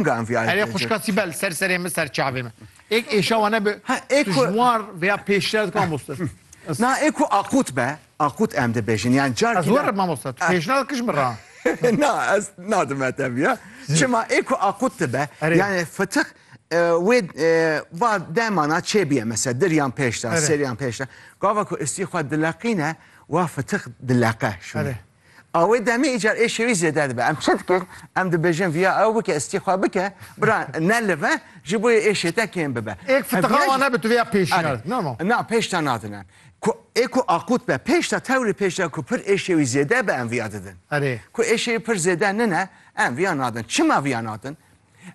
Nga em vî Erê xuşka Sîbel ser serê min ser çavê min. Êk êşa wane bi tu ji war vêya pêşre dikwa mamoste. Na ê ku aqut be, aqut em dibêjin. Yan car Ez werim mamoste, tu pêşnada kij min ra. Na ez nadim e teviya. Çima ê ku aqut dibe, yani fıtık wê va demana çêbiye mesela dir yan pêşta, ser yan pêşta. Gava ku istî xwe dileqîne, wa fıtık dileqe şûnê. A wê demê îcar êşê wî zêde dibe. Em çi dikin? Em dibêjin viya ew bike, istî xwe bike, bira nelive ji bo êşê te kêm bibe. Ê fitiqa wan nebe tu viya pêşî nerdin. No no. Na pêş te nadin em. Ku ê ku aqût be pêş te tewrê pêş te ku pir êşê wî zêde be em viya didin. Erê. Ku êşê wî pir zêde nine em viya nadin. Çima viya nadin?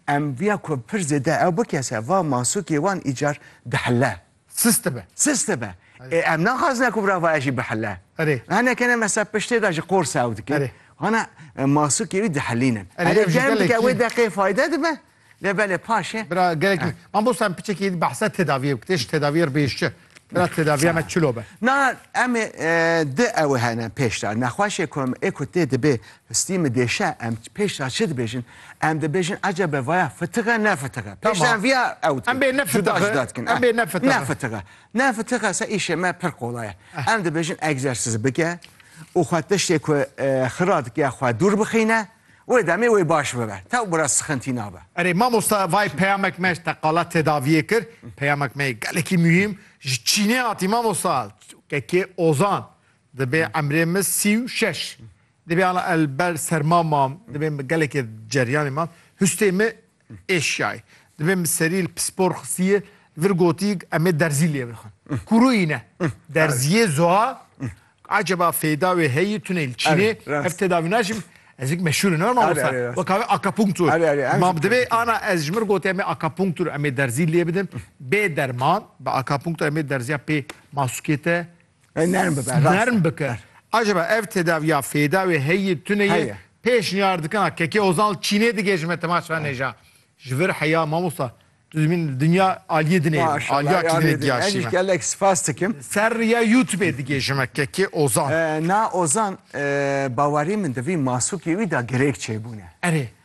Em viya ku pir zêde ew bike ser va masûkê wan îcar dihile. Sist be. Sist be. Ê em naxwazine ku birava e jî bihile. Erê. Hineke ne mesela piştê de ji qors ew dike. Erê. Hana masûkê wî dihilînin. Erê ev jî gelekî. Dike wê deqê fayde dibe. Lê belê paşê. Bira gelekî. Man bosta em piçekî behsa tedaviyê bikê. Ji tedaviyê re bêş çi? Bira tedaviya me çilo be. Na em ê di ew hene pêş de. Nexweşê ku em ê ku tê dibê Histî min dêşe em pêş ra çi dibêjin? Em dibêjin ecebe vaya fitig e ne fitig e. Pêş ra em viya ew dikin. Cuda cuda dikin. Em bê ne fitig e. Ne fitig e. Ne fitig e se îşê me pir qolay e. Em dibêjin egzersîz bike û xwe tiştê ku xira dike ya xwe dûr bixîne. Wê demê wê baş bibe. Taw bira sixintî nabe. Erê mamosta vay peyamek me ji teqala tedaviyê kir. Peyamek me yê gelekî muhîm. Ji Çînê hatî mamosta. Kekê Ozan. Dibê emrê min sî û şeş. Dibê ala el ber serma mam. Dibê min gelekê ceryanê mam. Hustê min êşiyayê. Dibê min serî li pispor xistiyê vir gotiyek em ê derzî lê bixin. Kûru îne. Derziyê zoa eceba fêda wê heyî tunê li Çînê ev tedavî naşim. Ez hik meşhûr in mamosta. Weka wê akapunktur. Mam dibê ana ez ji min gotê em ê akapunktur em ê derzî lê bidin. Bê derman bi akapunktur em ê derziya pê masukê te Nerm bibe. Nerm bike. Acaba ev tedaviya fêda wê heyî tune yê? Pêşniyar dikina Kekê Ozal Çînê digêjime temaşa nêja. Ji vir heya mamosta tu dibîn dinya aliyê dinê aliya kîdinê diyaşîme. Gelek spas dikim. Ser riya YouTubeê digêjime Kekê Ozan. Na Ozan bawerî min di vî masûkê wî de girêk çêbûne. Erê.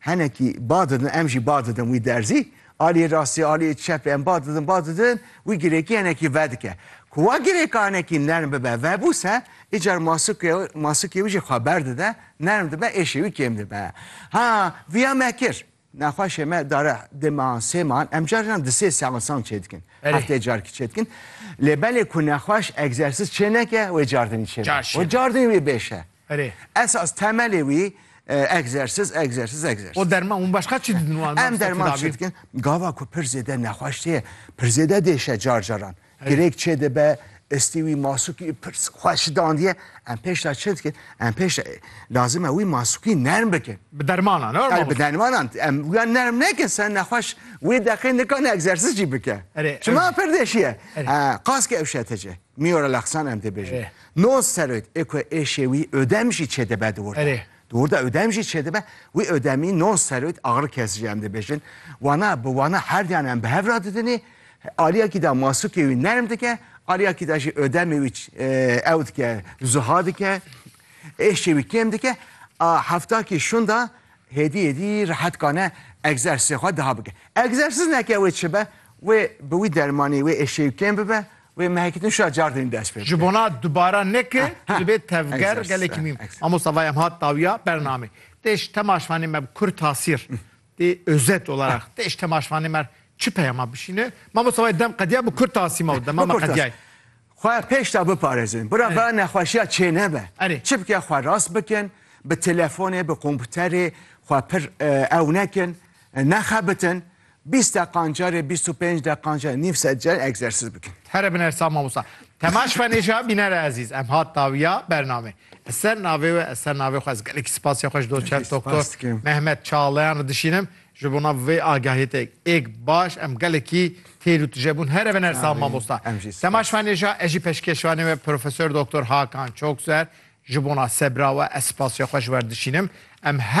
Hinekî ba didin, em jî ba didin wî derzî. Aliyê rastî, aliyê çepê em ba didin, ba didin, wî girêkî hinekî vedike. Ku wa girêka hinekî nerm bibe, vebûse, îcar masûkê, masûkê wî jî xwe berdide, nerm dibe, êşê wî kêm dibe. Ha, viya me kir. Nexweşê me dare dê mehan, sê mehan, em carinan di sê seansan çêdikin. Belê. Hefteyê carkî çêdikin. Lê belê ku nexweş egzersîz çêneke, wê cardinî çêbe. Car çêbe. Wê cardinî wê bêşe. Erê. Esas temelê wî egzersiz, egzersiz, egzersiz. O derman hûn başka çi didin wan? Em derman çi dikin? Gava ku pir zêde nexweş tê, pir zêde dêşe car caran. Girêk çê dibe, istî wî masûkî pir xweş dandiye. Em pêş de çi dikin? Em pêş de lazim e wî masûkî nerm bikin. Bi dermanan, ewr mamoste. Bi dermanan. Em wî nerm nekin ser nexweş wê deqê nikane egzersiz jî bike. Çima pir dêşiye? Qas ki ewşete ci. Miyora lexsan em dê bêjin. No serok ê ku êşê wî Ödem jî çêdibe di wir de. Di wir de Ödem jî çêdibe. Wî Ödemî no serok axir kes jî em dibêjin. Wana bi wana herdiyan em bi hev re didinê. Aliyekî de masûkê wî nerm dike, aliyekî de jî Ödemê wî ew dike, rizuha dike. Êşê wî kêm dike. A heftakî şunda hêdî hêdî rehetkane egzersizê xwe diha bike. Egzersiz neke wê çi be, wê bi wî dermanî wê êşê wî kêm bibe Wê mehekî din şa car din dest pê bike. Ji bona dubara neke tu dibê tevger gelekî mîm. Mamosta vay em hat dawiya bernamê. Tê ji temaşvanê me bi kur tasîr. Tê özet olarak. Tê ji temaşvanê me çi peyama bişîne. Mamosta vay dem qediya bi kur tasîma û dema me qediyayê. Xwe pêşda biparêzin. Bira be nexweşiya çênebe. Çi bike xwe rast bikin. Bi telefonê, bi komputerê xwe pir ew nekin. Nexebitin. Bîst deqan carê bîst û pênc deqan carê nîv sed carê egzersîz bikin. Here bin ersa mamosta. Temaş Fenêşa bînere ezîz em hat dawiya bername. Ez ser navê we ez ser navê xwe ez gelekî spasiya xwe ji doçent doktor Mehmet Çağlayan re dişînim ji bona vê agahiyê te êk baş em gelekî têr û tije bûn. Here bin ersa mamosta. Temaş Fenêşa ez jî peşkêşvanê we Profesor Doktor Hakan Çokser ji bona sebra we ez spasiya xwe ji we re dişînim. Em her